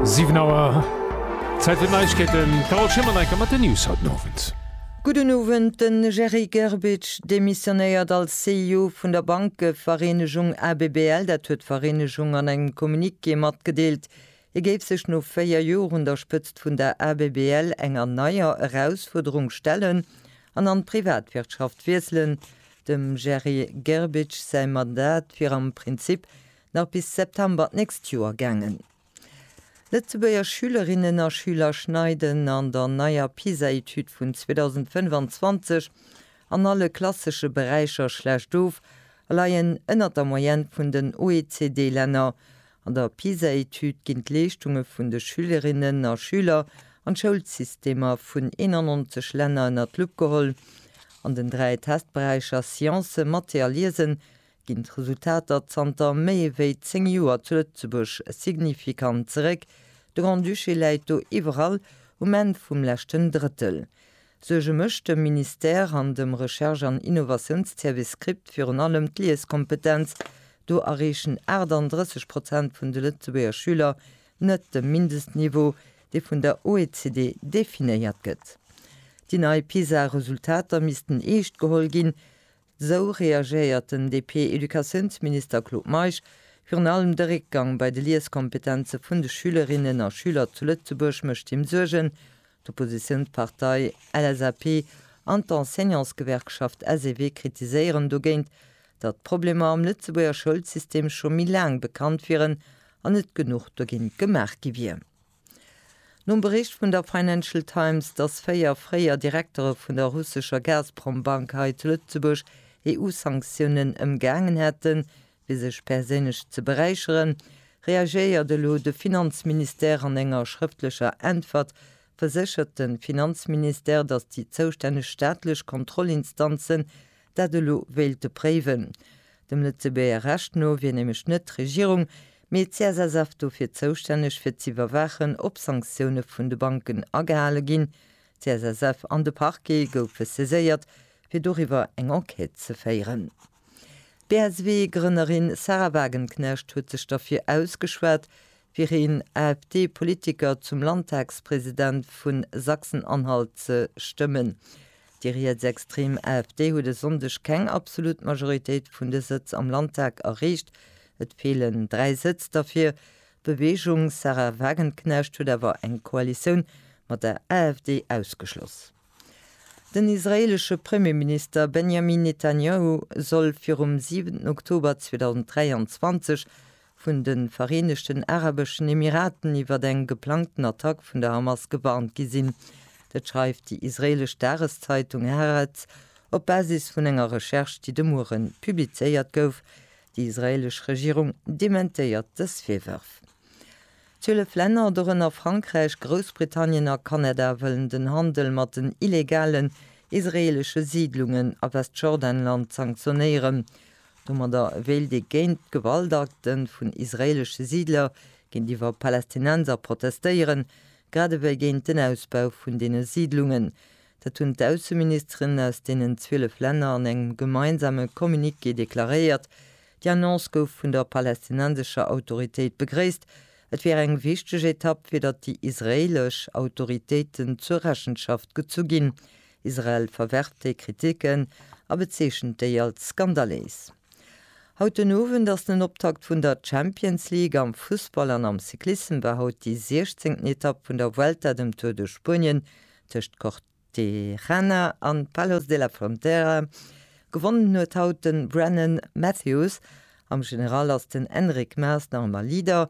Siwen Auer, Zäit fir d'Neiegkeeten. D'Carole Schimmer-Necker mat den News haut den Owend. Gudden Owend, De Jerry Gerbic demissionéiert als CEO vun der Bankevereenegung ABBL. Dat huet d'Vereenegung an engem Communiqué matgedeelt. Hie géif sech no 4 Joer un der Spëtzt vun der ABBL enger neier Erausfuerderung stellen an an d'Privatwirtschaft wiesselen. Dem Jerry Gerbic säi Mandat wier am Prinzip Nach bis September d'nächst Joer gaangen. Lëtzebuerger Schülerinnen a Schüler schneiden an der neier PISA-Etüd vun 2025 an alle klassesche Beräicher schlecht of a leien ënnert der Moyenne vun den OECD-Länner. An der PISA-Etüd ginn d'Leeschtunge vun de Schülerinnen a Schüler an d'Schoulsystemer vun 91 Länner ënnert d'Lupp geholl. An den dräi Testberäicher Sciencen, Mathé a Liesen ginn d'Resultater zanter méi ewéi 10 Joer zu Lëtzebuerg signifikant zeréck, de Grand-Duché läit do iwwerall um Enn vum leschten Drëttel. Suerge mécht dem Ministère an dem Recherche an Innovatiounsservice CRIPT virun allem d'Lieskompetenz, do erreechen 38 Prozent vun de Lëtzebuerger Schüler net de Mindestniveau, dee vun der OECD definéiert gëtt. Déi nei PISA-Resultater missten eescht geholl ginn. Esou reagéiert den DP-Educatiounsminister Claude Meisch virun allem de Réckgang bei de Lieskompetenze vun de Schülerinnen a Schüler zu Lëtzebuerg mécht him Suergen. D'Oppositiounspartei LSAP an d'Enseignantsgewerkschaft SEW kritiséieren dogéint, datt d'Problemer am Lëtzebuerger Schoulsystem scho méi laang bekannt wieren an net genuch dogéint gemaach gi wier. Nom Bericht vun der Financial Times, dass véier fréier Direktere vun der russescher Gazprom-Bank hei zu Lëtzebuerg EU-Sanktiounen ëmgaangen hätten, fir sech perséinlech ze beräicheren, reagéiert elo de Finanzministère. An enger schrëftlecher Äntwert verséchert de Finanzministère, dass déi zoustänneg staatlech Kontrollinstanzen dat elo wéilte préiwen. Dem Lëtzebuerger Recht no wier nämlech net d'Regierung, mee d'CSSF dofir zoustänneg fir z'iwwerwaachen, ob Sanktioune vun de Banken agehale ginn. D'CSSF an de Parquet goufe saiséiert, fir doriwwer eng Enquête ze féieren. D'BSW-Grënnerin Sahra Wagenknecht huet sech derfir ausgeschwat, fir een AfD-Politiker zum Landtagspresident vu Sachsen-Anhalt ze stëmmen. Déi rietsextrem AfD huet e Sonndeg keng absolut Majoritéit vun de Sëtz am Landtag erreecht. Et feelen dräi Sëtz der fir Bewegung. D'Sahra Wagenknecht huet awer eng Koalitioun mat der AfD ausgeschloss. Den israeelesche Premierminister Benjamin Netanjahu soll virum 7 Oktober 2023 vun de Vereenegten Arabeschen Emiraten iwwer eng geplangten Attack vun der Hamas gewarnt gi sinn. Dat schreift déi israeelesch Dageszeitung Haaretz op Basis vun enger Recherche, déi de Mueren publizéiert gouf. Déi israeelesch Regierung dementéiert dës Virwërf. Zwielef Länner, dorënner Frankräich, Groussbritannien a Kanada, wëllen den Handel mat den illegalen israeelesche Siidlungen a Westjordanland sanktionéieren. Domadder wéilt ee géint d'Gewaltakte vun israeelesche Siidler géintiwwer Palästinenser protestéieren, grad ewéi géint den Ausbau vun deene Siidlungen. Dat hunn d'Ausseministeren aus deenen 12 Länner an engem gemeinsame Communiqué deklaréiert. Déi Annonce gouf vun der palästinensescher Autoritéit begréisst. Et wier eng wichteg Etapp, fir datt déi israeelesch Autoritéiten zur Rechenschaft gezu ginn, Israel verwerft déi Kritiken a bezeechent déi als skandaléis. Haut den Owend ass den Optakt vun der Champions League. Am Fussball an am Cyclissem war haut déi siechzéngten Etapp vun der Vuelta, dem Tour de Spuenien, tëscht Cortejarena an Palos de la Frontera. Gewonnen huet haut de Brennan Matthews. Am General ass den Enric Maas nach ëmmer Leader,